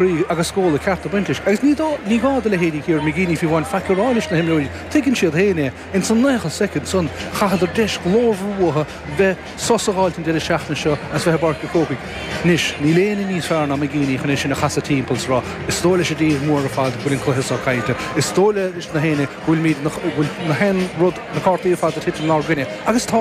Rith agus scóladh ceart ag baint leis. Agus ní dó, ní gá do leithéidí Kieran McGeeney fiú amháin faic a rá leis na himreoirí, tuigeann siad féin é. In san 90 soicind san, chaitheadar deis ghlórmhar uathu bheith, sos a dh'fháilt an deireadh seachtaine seo as bheith i bPáirc a' Chrócaigh. Anois, níl éinne níos fearr ná McGeeney chun é sin a chasadh timpeall, 's rá, is dóigh leis an dtír mhór ar fad go bhfuil an cluiche so caillte. Is dóigh leis na héinne go bhfuilimid na, go bhfuil na haon rud, na cártaí ar fad ag titim 'nár gcoinne. Agus tá!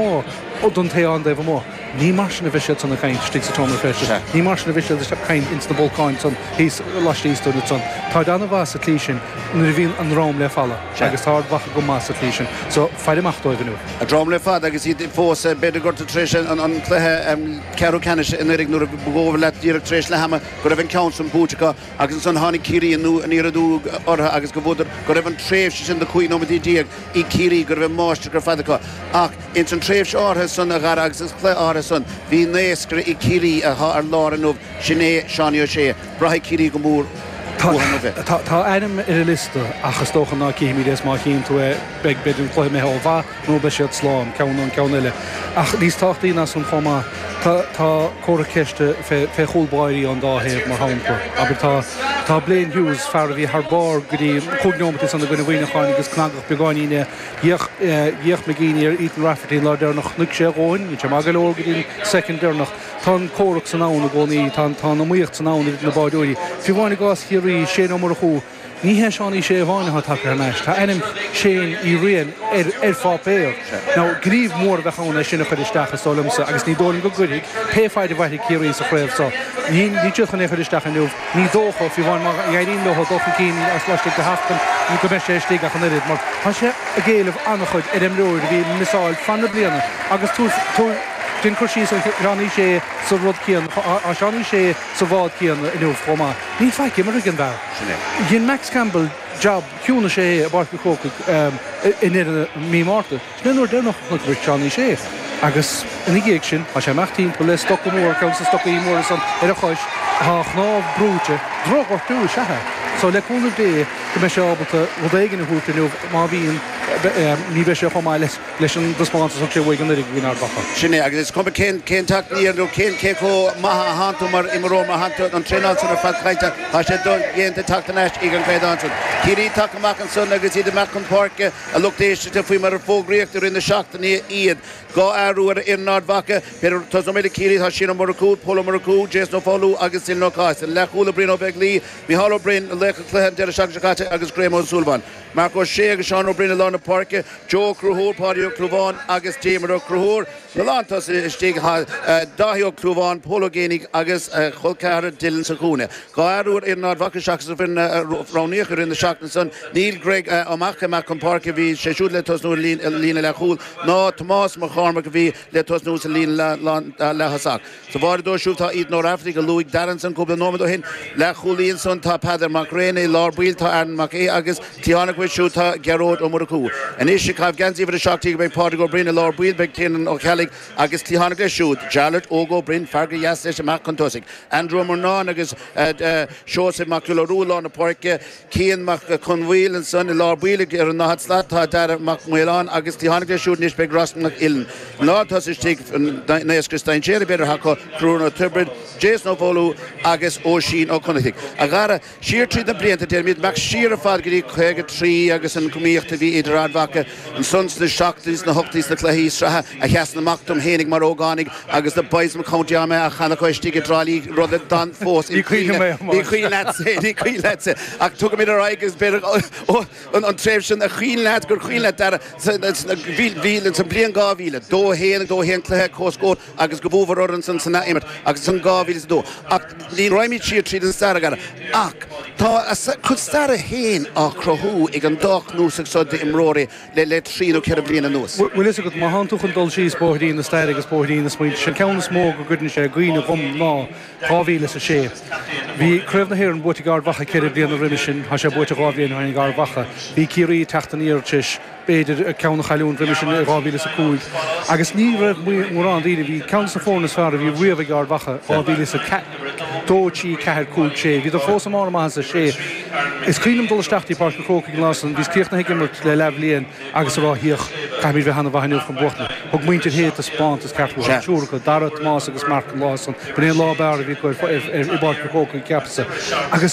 Don té atá ar an dtaobh amuigh. Ní mar sin a bheidh siad san, ag caint istigh sa tseomra feistis. Sea. Ní mar sin a bheidh siad ag caint ins na bolcáin san, thíos laistíos dúinn san. Táid an-mhaith sa tslí sin, nuair a bhíonn a ndrom le falla. Sea. Agus táid maith go maith sa tslí sin. So, fair amach dóibh inniu. A ndrom le falla agus iad fós, b'fhéidir, gortaithe tar éis an chluiche ceathrú ceannais anuiridh, nuair ba dhóigh leat, díreach tar éis leath ama, go raibh an ceann sin buaite acu agus ansan tháinig Ciarraí aniar aduaidh orthu agus go bhfuaireadar, go raibh an tréimhse sin de chúig nóiméad déag ag Ciarraí, go raibh an mháistreacht ar fad acu. Ach. Ins an tréimhse áirthe san, a Dhara, agus an cluiche áirthe san, bhí naoscaire ag Ciarraí athá ar lár inniu, sin é Seánie Ó Sé. Braithfidh Ciarraí go mór uathu inniu é. Tá a ainm ar an liosta, ach is dócha ná cífimid é, is má chíonn tú é, beidh, b'fhéidir, an cluiche imithe ó mhaith, nó beidh siad slán, ceann nó an ceann eile. Ach níos tábhachtaí ná san chomh maith, tá, tá comhartha ceiste fé, fé chúl báirí ón dá thaobh, mar shampla. Abair, tá, tá Blaine Hughes, fear a bhí thar barr go dtí chúig neomataí san i gcoinne Mhuineacháin agus cnagadh beagáinín é, D'fhéach, d'fhéach McGeeney ar Ethan Rafferty an lá deireanach. Chonaic sé a dhóthain. Níl sé maith go leor go dtí an soicind deireanach. Tá an comhrac san ann i gcónaí. Tá, tá an iomaíocht san ann idir na báireoirí. Fiú amháin i gcás Chiarraí, Shane Ó Murchú, ní hé Seánie Shea amháin atá tagtha thar n-ais. Tá ainm Shane Uí Riain ar, ar pháipéar. Now, gníomh mór a bheadh ann é sin a chur isteach, is dóigh liomsa, agus ní dóigh liom go gcuirfidh, pé faid a mhairfidh Ciarraí sa chraobh seo. Níl, níl siad chun é a chur isteach inniu. Ní dócha, fiú amháin má éiríonn leo dul chun cinn is laistigh de sheachtain, go mbeidh sé istigh ach an oiread mar tá sé ag éileamh an-chuid ar imreoir a bhí ag misseáil fan na bliana agus táir ag déanamh cur síos ar Sheánie Shea sa rud céanna, tá Seánie Shea sa bhád céanna inniu chomh maith. Ní fhacamar an fear sin ó dhein Max Campbell jab ciúnais air i bPáirc an Chrócaigh i ndeireadh mí Márta. Sin é an uair deireanach a chonaiceamar Seán Ó Sé agus ina dhiaidh sin tá sé ag imeacht timpeall le stoca mór, ceann de na stocaí móra san ar a chois, tá a chnámh brúite. Drochghortú is ea é. So le cúnamh Dé go mbeidh sé ábalta rud éigin a thabhairt inniu, má bhíonn, ní bheidh sé chomh maith leis an dtaispeántas a thug sé uaidh anuraidh i gcoinne Ard Mhacha. Sin é, agus is cuma cén teacht aniar nó cén cé chomh maith is atánn tú mar imreoir, má tánn tú tar éis an traenáil san ar fad a chailliúint, tá sé dodhéanta teacht thar n-ais ag an gcaighdeán san. Ciarraí tagtha amach ansan agus iad amach chun páirce. A lucht éisteachta, faoi mar a fógraíodh i rith na seachtainí iad, dhá athrú ar fhoireann Ard Mhacha, b'fhéidir, tosnóimid le Ciarraí, tá Shane Ó Murchú, Pól Ó Murchú, Jason Ó Foghlú agus Dylan Ó Cathasaigh, na leathchúlaithe, Brian Ó Beaglaoich, Micheál Ó Braoin, laoch an chluiche an deireadh seachtaine seo caite, agus Graham Ó Súilleabháin, Marc Ó Sé agus Seán Ó Briain i lár na páirce, Joe Ó Conchúir, Páidí Ó Clúmháin agus Diarmuid Ó Conchúir, na lántosaithe, istigh, Dáithí Ó Clúmháin, Pól Ó Géibheannaigh agus a chol ceathrair Dylan sa chúinne. Dhá athrú ar fhoireann Ard Mhacha seachas an fhoireann a roghnaíodh i rith na seachtaine san, níl Greg Mac Cába chun páirce a bhí sé siúd le tosnú ar líne leathchúil, ná Tomás Mac Cormaic a bhí le tosnú sa líne leaththosach. Sa bháire dóibh siúd tá Ethan Ó Raifeartaigh, a luaigh Dara ansan cúpla nóiméad ó shin. Leathchúlaí ansan tá Peadar Mag Ráine, i lár baill tá Aaron Mac Aoidh agus cliathán aige siúd tá Gearóid Ó Murchú. Anois is é ag caitheamh geansaí uimhir a seacht déag beidh Pádraig Ó Broin, i lár baill beidh Tiernan Ó Ceallaigh, Agus cliathán aige siúd, Jarlath Óg Ó Broin, fear gur dheas leis amach chun tosaigh, Andrew Ó Murnáin agus Seosamh Mac Giolla Rua i lár na páirce, Cian Mac Conmhaoil ansan i lár baill ag ar an ndaichead slat tá Daire Mac Maoláin agus cliathán aige siúd anois beidh Ross Mac Uilinn i lár tosaigh istigh naoscaire is dainséaraí b'fhéidir acu, Conchúr Ó Tiobraid, Jason Ó Foghlú agus Oisín Ó Connachtaigh. Siar tríd na blianta, deirimid, amach siar ar fad go dtí 53 agus an iomaíocht a bhí idir Ard Mhacha ansan sna seachtóidí, sna hochtóidí sna cluichí sraithe a sheasann amach dom fhéinig mar ógánaigh agus na boys from County Armagh á chanadh acu istigh i dTrá Lí, rud a d'fhan fós im' chuimhne. Ní cuimhin leat é, ní cuimhin leat é, ach tugaimid ar aghaidh agus b'fhéidir, oh, an tréimhse sin a chuimhin leat, gur chuimhin leat, Dara, bhí, bhí, sa mbliain 2000, dó a haon, dó a haon cluiche, comhscór, agus gur bhuamar orthu ansan san athimirt agus ansan 2002 ach ní raghaimid siar tríd an stair againn ach tá a gcuid staire féin á cruthú ag an dá chnuasach seo d'imreoirí le le trí nó ceithre bliana anuas. Bhfuil fhios agat, má thánn tú chun dul síos bóithrín na staire agus bóithrín na smaointe, sé an ceann is mó go gcuireann sé i gcuimhne dhom ná dhá mhíle is a sé. Bhí Craobh na hÉireann buaite ag Ard Mhacha ceithre bliana roimhe sin, tá sé buaite dhá bhliain ó shin ag Ard Mhacha. Bhí Ciarraí ag teacht aniar tar éis. b'fhéidir ceann a chailliúint, roimhe sin i 2005 agus ní raibh mórán daoine, bhí ceann des na foirne is fearr a bhí riamh ag Ard Mhacha 2000 is 2, 3, 4, 5, 6, bhíodar fós i mbarr a maitheasa 6, is cuimhin liom dul isteach dtí Páirc an Chrócaigh an lá san, bhíos críochnaithe ag imirt le leathbhliain agus a rá féach, caithfimid bheith ana mhaith inniu chun buachtaint, thug muintir Shé taispeántas ceart uathu, triúr acu, Dara, Tomás agus Marc an lá san, b'in é an lá ab fhearr a bhí acu ar i bPáirc an Chrócaigh cheapas-sa agus.